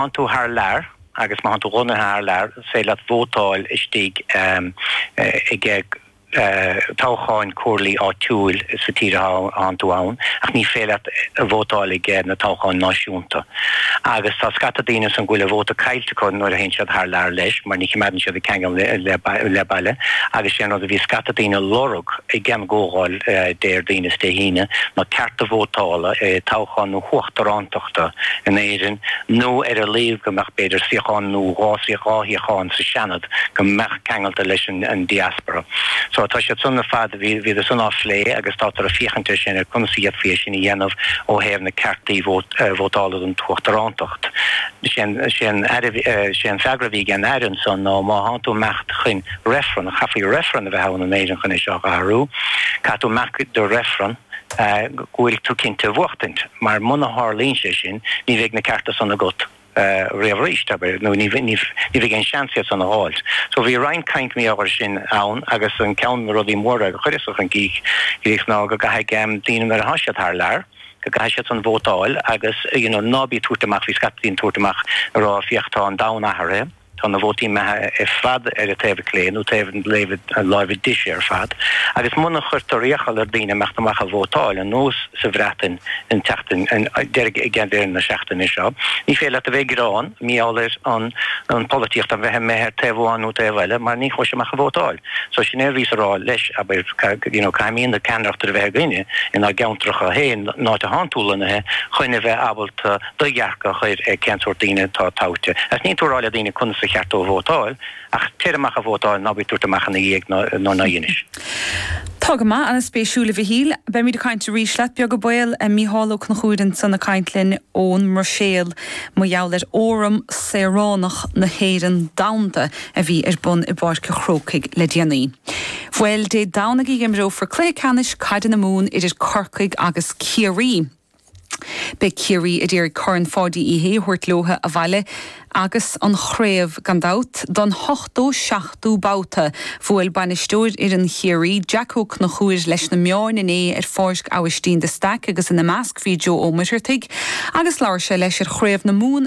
thánn tú thar lear agus má thánn tú lonnaithe thar lear is féidir leat vótáil istigh ag na toghcháin comhairlí áitiúil sa tír a thánn tú ann ach ní féidir leat a vótáil ag na toghcháin náisiúnta. Agus tá scata daoine san go bhfuil a vóta caillte acu nuair a théann siad thar lear leis mar ní choimeádann siad an ceangal le baile agus sé an rud a bhí scata daoine a lorg ag an gComhdháil Déardaoin is Dé hAoine ná cearta vótála i toghchán na huachtarántachta in Éirinn nó ar a laghad go mbeadh b'fhéidir suíochán nó dhá suíoch dhá shuíochán sa Seanad go mbeadh ceangailte leis an diaspora. So tá sé sin ar fad bhíodar san á phlé agus tátar ag féachaint air sin ar conas a dhéanfaí é sin a dhéanamh ó thaobh na ceartaí vótála don t-uachtarántacht. Sé an freagra a bhí ag an Aire anso ná má thánn tú ag imeacht chun Reifreann. Chaithfí reifreann a bheith ann in Éirinn chun é seo a athrú. Caithfidh tú marc do reifreann go bhfuil tú cinnte de bhuachtaint mar muna tharlaíonn sé sin ní bheidh na cearta san agat riamh arís, abair, nó ní bheidh aon seans iad san a dh'fháilt. So bhí roinnt caint meáite air sin ann agus ceann de na rudaí móra a chuireas chun críche ná go gcaithfidh daoine nuair atá siad thar lear, go gcaithfidh siad san vótáil agus, you know, ná bí ag tabhairt amach, bhí scata daoine ag tabhairt amach ag rá féach tá an domhan athraithe, Tá na vótaí imithe ar fad ar an taobh clé, nó taobh na láimhe deise ar fad, agus muna chuirtear iachall ar daoine imeacht amach a vótáil, ar nós sa Bhreatain an tseachtain, ag deireadh na seachtaine seo, ní féidir leat a bheith ag gearán maíomh ar an pholaitíocht a bheith amuigh ar taobh amháin nó taobh eile, mar ní chuais amach a vótáil. So sin é a bhíos a rá leis, abair, you know, caithfimíd an cheannaireacht a bheith againne inár gceantracha féin, in áit a thánn tú lonnaithe, chun a bheith ábalta, do dhearcadh a chuir ar cén sórt daoine atá toghte. Agus níleann tú ag rá le daoine conas ba cheart dóibh vótáil, ach téir amach a vótáil, ná bí ag tabhairt amach ina dhiaidh nuair ná dheinis. Tá go maith, an-spéisiúil a Mhichíl. Beimid ag caint arís leat, beag an baol, Mícheál Ó Conchúir ansan ag caint linn ón mBruiséil mar gheall ar Fhóram Saoránach na hÉireann Domhanda a bhí ar bun i bPáirc a' Chrócaigh le déanaí. Bhuel Dé Domhnaigh a dh'imreofar cluiche ceannais caide na Mumhan idir Corcaigh agus Ciarraí. Beidh Ciarraí ag iarraidh Corn Pháidí Uí Shé a thabhairt leotha abhaile agus an chraobh gan dabht don hochtó seachtú babhta, bhuail bainisteoir fhoireann Chiarraí, Jack Ó Conchúir, leis na meáin inné ar Pháirc Abhaistín de Staic agus ina measc bhí Joe Ó Muircheartaigh agus labhair sé leis ar Chraobh na Mumhan